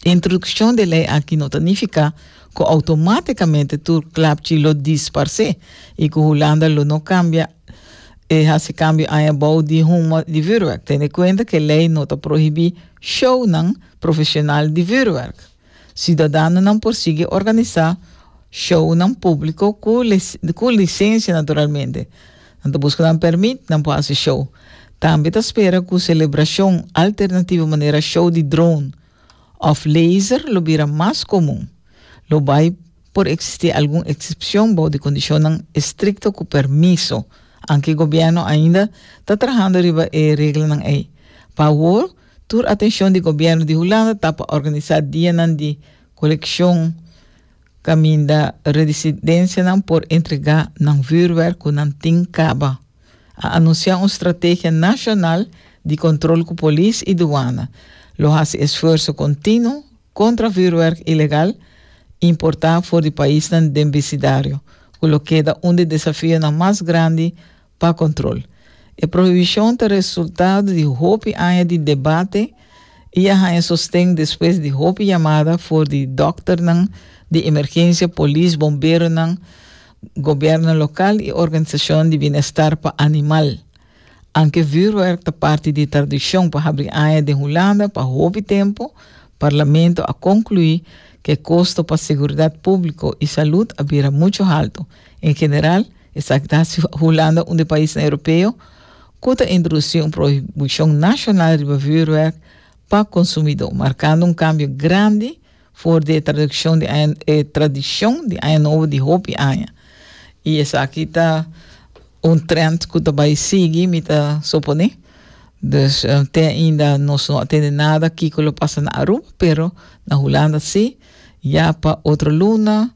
E introdukshon di e lei aki no ta nifiká ku outomátikamente tur klapchi lo disparsé i ku Hulanda lo no kambia e hasi kambio aña bou di Humo di Vuurwerk, tene kuenta ku e lei no ta prohibí shownan profeshonal di vuurwerk. Siudadanonan por sigui organisá shownan públiko ku lisensia naturalmente. Nan ta buska nan permit, nan por hasi show. Tambe ta spera cu celebracion alternativo manera show di drone of laser lo bira mas comun. Lo bay por existi algun excepcion bou di condicionnan estricto cu permiso, anke gobierno ainda ta trahando riba e reglanan ey. Pa awor, tur atencion di gobierno di Hulanda ta pa organisa dianan di coleccion Caminda residencianan por entrega nan vuurwerk cu nan tin caba, a anuncia un strategia nacional di control cu polis y douana lo haci esfuerso continuo contra vuurwerk ilegal importa for di paisnan den bicidario, cu lo keda un di desafionan mas grandi pa control. E prohibicion ta resultado di hopi aña di debate y a haña sosten despues di hopi yamada for di dokternan di emergencia, polis, bomberonan, gobierno local y organisacionnan di bienestar pa animal. Anke vuurwerk ta parti di tradicion pa habri aña den Hulanda pa hopi tempo, Parlamento a conclui cu e costo pa seguridad publico y salud a bira mucho halto, En general, esaki ta hasi Hulanda un di paisnan Europeo ku ta introdusi un prohibishon nashonal riba vuurwerk pa konsumidó, markando un kambio grandi for di e tradukshon di aña e tradishon di Aña Nobo di hopi aña. I esaki ta un trend ku ta bai sigui, mi ta suponé. Dus te ainda nos no a tende nada kiko lo pasa na Aruba, pero na Hulanda sí, ya pa otro luna.